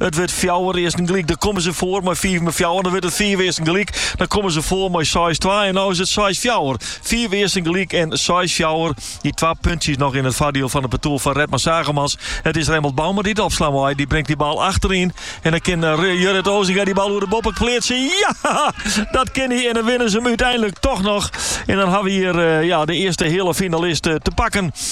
It wurdt fjouwer earsten gelyk. Dan komme se foar mei fiif mei fjouwer. Dan wurdt it fiif earsten gelyk. Dan komme se foar mei seis twa. En no is it seis fjouwer. Fiif earsten gelyk en seis fjouwer. Dy twa puntsjes noch yn it foardiel fan it partoer fan Redmer Zaagemans. It is Remmelt Bouma dy't opslaan mei. Dy bringt dy bal achteryn. En dan kin Jurrit Osinga dy bal oer de boppe pleatsje. Ja! Dat kin hy en dan winne se him úteinlik toch noch. En dan hawwe we hjir de earste heale finalist te pakken.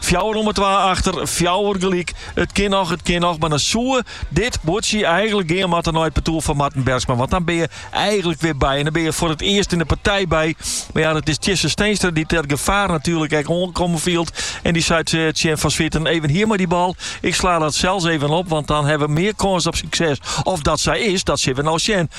Fjouwer om 'e twa achter, fjouwer gelyk. It kin noch, it kin noch. Mar dan soe dit buordsje eigentlik gean moatte nei it partoer fan Marten Bergsma. Want dan bin je eigentlik wer by. En dan bin je foar it earst yn de partij by. Mar ja, dat is Tjisse Steenstra dy't dat gefaar natuerlik ek oankommen fielt. En dy seit eh, tsjin Van Zwieten, even hjir mei dy bal. Ik slaan dat sels even op, want dan hawwe we mear kâns op sukses. Of dat sa is, dat sille we no sjen.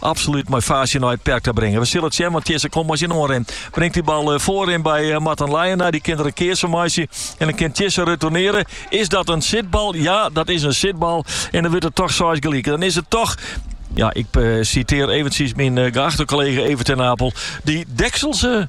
Absolút mei faasje nei it perk ta bringen. We sille it sjen, want Tjisse komt mei syn oanrin. Bringt dy bal eh, foarin by eh, Marten Leijenaar. Dy kin der in keats fan meitsje. En dan kin Tjisse retourneren. Is dat in sitbal? Ja, dat is in sitbal. En dan wurdt it toch seis gelyk. Dan is it toch ja, ik eh, citeer eventjes myn eh, geachte kollega Evert ten Napel. Die dekselse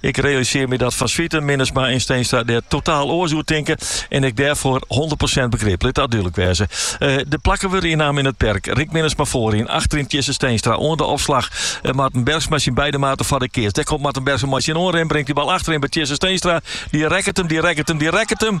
Ik realiseer me dat Van Zwieten, Minnesma en Steenstra der totaal oars oer tinke en ik dêrfoar 100% begrip. Lit dat dúdlik wêze. Eh, de plakken wurde ynnaam yn it perk. Rick Minnesma foaryn, achteryn Tjisse Steenstra oan de opslag. Eh, Marten Bergsma syn beide maten foar de keats. Dêr komt Marten Bergsma mei syn oanrin, bringt dy bal achteryn by Tjisse Steenstra. Dy rekket him, dy rekket him, dy rekket him.